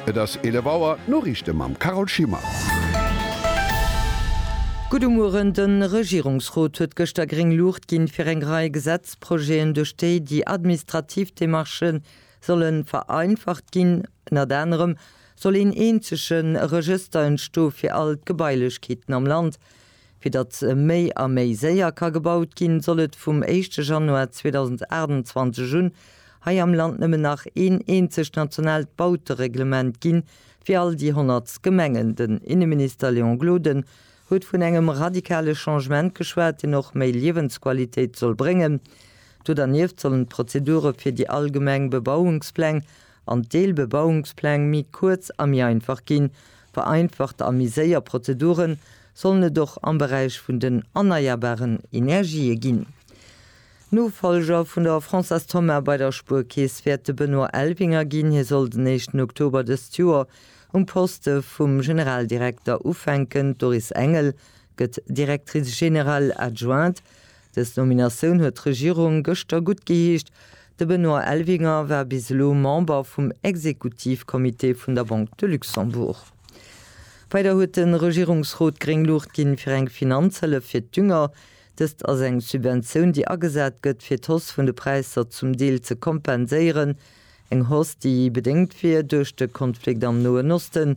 Et ass 11 Auer, d'Noriichte mam Carole Schimmer. Gudde Mueren, De Regierungsrot huet gëschter gréng Luucht ginn, fir eng Rei Gesetzprojeten, duerch déi déi administrativ Demarchë solle vereinfacht ginn. Ënnert anerem soll een eenzege Regëster entstoe fir all d'Gebailechkeeten am Land. Fir datt méi a méi séier ka gebaut ginn, soll et vum éischte Januar 2028 un hei am Land nëmmen nach een eenzegt nationaalt Bautereglement ginn, fir all déi 100 Gemengen. Den Inneminister Léon Gloden huet vun engem radikale Changement geschwat, deen och méi Liewensqualitéit soll bréngen. Do dernieft sollen d'Prozedure fir déi allgemeng Bebauungspläng an d'Deelbebauungspläng méi kuerz a méi einfach ginn. Vereinfacht a méi séier Prozedure sollen et och am Beräich vun den erneierbaren Energië ginn. Nofollger vun der Françoise Thoma bei der Spuerkeess wäert de Benoît Elvinger ginn. Hie soll den éischten Oktober dëst Joer um Poste vum Generaldirekter ufänken. D'Doris Engel gëtt Directrice générale adjointe. Dës Nominatioun huet d'Regierung gëschter gutt geheescht. De Benoît Elvinger war bis elo Member vum Exekutivcomité vun der Banque de Luxembourg. Weider huet de Regierungsrot gréng Luucht ginn, fir eng Finanzhëllef fir d'Dünger. Dëst ass eng Subventioun, déi agesat gëtt, fir d'Hausse vun de Präisser zum Deel ze kompenséieren. Eng Hausse, déi bedéngt wier duerch de Konflikt am Noen Osten,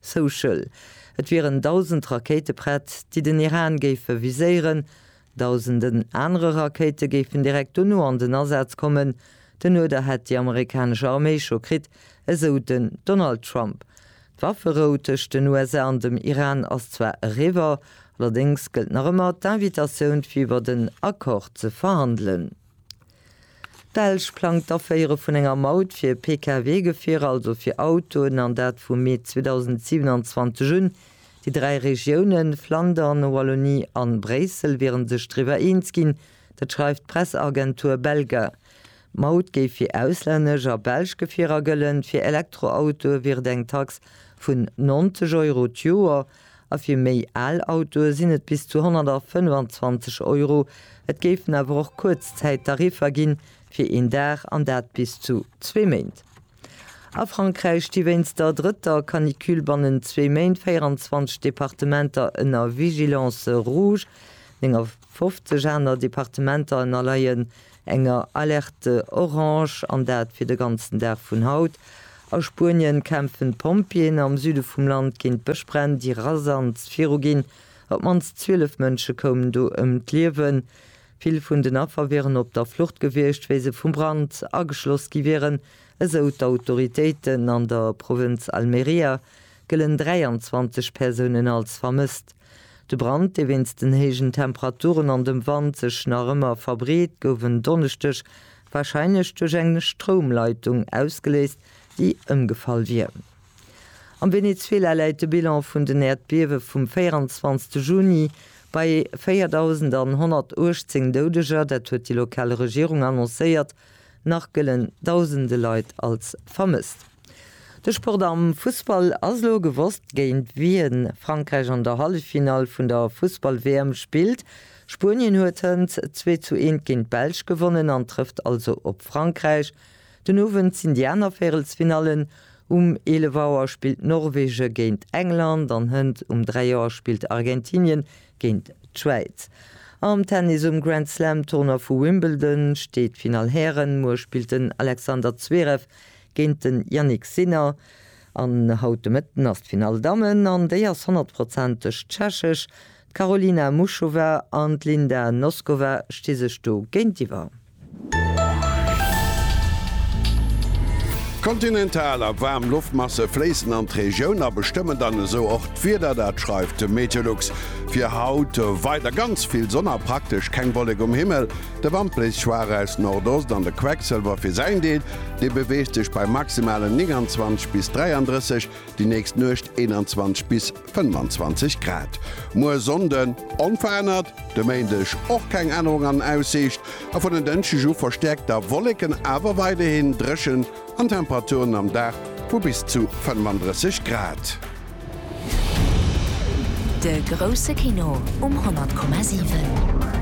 Social, Et wieren dausend Rakéite prett, déi den Iran géife viséieren. Dausenden anere Rakéite géifen direkt dono an den Asaz kommen. Den Uerder hätt déi amerikanesch Arméi scho kritt, esou den Donald Trump. D'Wafferou tëscht den USA an dem Iran ass zwar eriwwer, allerdéngs gëllt nach ëmmer d'Invitatioun fir iwwer en Accord ze verhandelen. D'Belsch plangt d'Aféiere vun enger Maut fir Pkw-Gefierer, also fir Autoen, an dat vu Mee 2027 un. Déi dräi Regiounen, Flandern, Wallonie an Bréissel, wieren sech driwwer eens ginn. Dat schreift d'Presseagentur Belga. D'Maut géif fir auslännesch a belsch Gefierer gëllen. Fir Elektroautoe wier et eng Tax vun 90 Euro d'Joer. a fir méi al Autoe sinn et bis zu 125 Euro. Et géifen awer och Kuerzzäittariffer ginn, fir een Dag an dat bis zu zwee Méint. A Frankräich sti wéinst der drëtter Canicule bannent zwee Méint 24 Departementer ënner Vigilance rouge, 59 aner Departementer ënnerleien enger Alerte orange, an dat fir de ganzen Dag vun haut. A Spuenien kämpfen d'Pompjeeën am Süde vum Land géint d'Bëschbränn, déi rasant viruginn. Op d'mannst 12 Mënsche koumen do ëm d'Liewen. Vill vun den Affer wieren op der Flucht gewiescht, wéi se vum Brand ageschloss gi wieren, esou d'Autoritéiten. An der Provënz Almeria gëllen 23 Persounen als vermësst. De Brand, dee wéinst den héijen Temperaturen an dem Wand sech nach ëmmer verbreet, gouf en Donneschdeg warscheinlech duerch eng Stroumleitung ausgeléist, déi ëmgefall wier. Am Venezuela läit de Bilan vun den Äerdbiewe vum 24 Juni bei 4.118 Doudeger, dat huet déi lokal Regierung annoncéiert. Nach gëllen dausende Leit als vermësst. De Sport am Fussball ass elo gewosst, géint wien Frankräich an der Halleffinall vun der Fussball-WM spillt. Spuenien huet hënt zwee zu eent géint d'Belsch gewonnen an trëfft also op Frankräich. Den Owend sinn déi aner Véirelsfinallen, Um 11 Auer spillt Norwege géint England an hënt um 3 Auer spillt Argentinien géint d'Schwäiz. Am Tennis um Grand Slam Tournoi vu Wimbledon steet d'Finall Hären. Muer spillt den Alexander Zverev géint den Jannik Sinner. An haut de Mëtten ass d'Finall Dammen an déi ass honnertprozenteg tschechesch. D'Karolina Muchova an d'Linda Noskova sti sech do géintiwwer. Kontinental a waarm Loftmasse fléissen an d'Regioun a bestëmmen dann esou och d'Wieder. Dat schreift de Meteolux. Fir haut weider ganz vill Sonn a praktesch keng Wollek um Himmel. De Wand bléist schwaach aus Nordost an de Quecksëlwer fir säin Deel, dee beweegt sech bei maximalen 29 bis 33, déi nächst Nuecht 21 bis. 25 Grad. Muer Sonnden onverännert, de Méindeg och keng Ännerung an Aussiicht a vun en Dënschdeg u verstäerkt da Wolleken, awer weiderhin dréchen an Temperaturen am Dag vu bis zu 35 Grad. De grousse Kino um 100,7.